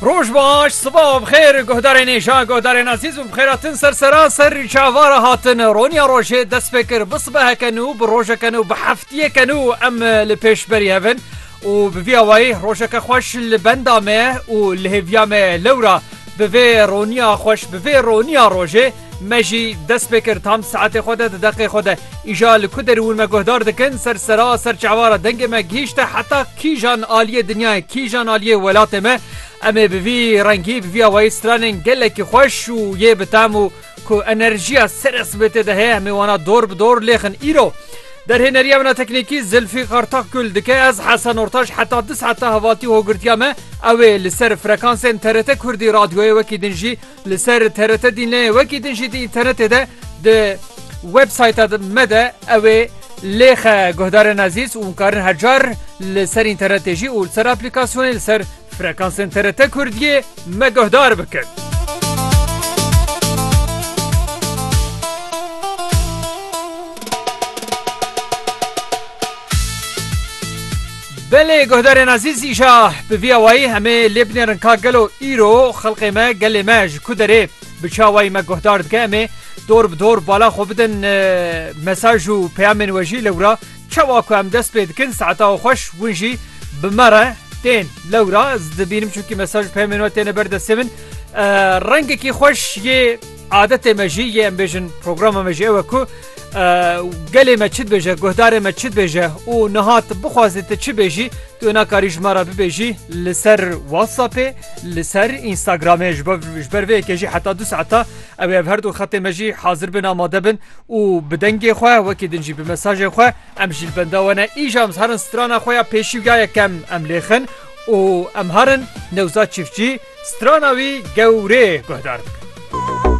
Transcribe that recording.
Roj baş, sibav bixêr, guhdarên êşa, guhdarên azîz û bixêratin ser seraser çavara hatin. Roniya rojê dest pê kir, bi sibeheke nû, bi rojeke nû, bi heftiyeke nû em li pêş berî hev in û bi vî awayî rojeke xweş li benda me û li hêviya me lewra bi vê roniya xweş, bi vê roniya rojê, Me jî dest pê kir tam saetê xwe de di deqê xwe de îja li ku derûn me guhdar dikin ser sera ser çavara dengê me gihîşte heta kîjan aliyê dinyayê kîjan aliyê welatê me em ê bi vî rengî bi vî awayî stranên gelekî xweş û yê bi tam û ku enerjiya sere sibêtê de heye em ê wana dor bi dor lêxin îro Derhêneriya min a teknîkî Zilfî Kartak Gul dike ez Hesen Ortaş heta di saeta hevaltî hogirtiya me ew ê li ser frekansên TRT Kurdî radyoyê wekî din jî Li ser TRT Dînleyê wekî din jî di înternetê de di websayta me de ew ê lêxe guhdarên ezîz û karin her car li ser înternetê jî û li ser aplîkasyonê li ser frekansên TRT Kurdiyê me guhdar bikin. Belê guhdarên ezîz îşa bi vî awayî em ê lê binêrin ka gelo îro xelqê me, gelê me ji ku derê bi çi awayî me guhdar dike em ê dor bi dor bala xwe bidin mesaj û peyamên we jî lewra çawa ku em dest pê dikin saeta we xweş hûn jî bi me re tên lewra ez dibînim çunkî mesaj û peyamên we têne ber destê min rengekî xweş yê adetê me jî yê em bêjin programa me jî ew e ku Gelê me çi dibêje guhdarê me çi dibêje û niha tu bixwazî tu çi bêjî tu wê nakarî ji me re bibêjî li ser WhatsAppê li ser Instagramê ji ber vê yekê jî heta du saeta ew ev her du xetê me jî hazir bin amade bin û bi dengê xwe wekî din jî bi mesajê xwe em jî li benda we ne îja em herin strana xwe ya pêşî û ya yekem em lêxin û em herin newza çiftçî strana wî gewrê guhdar bikin.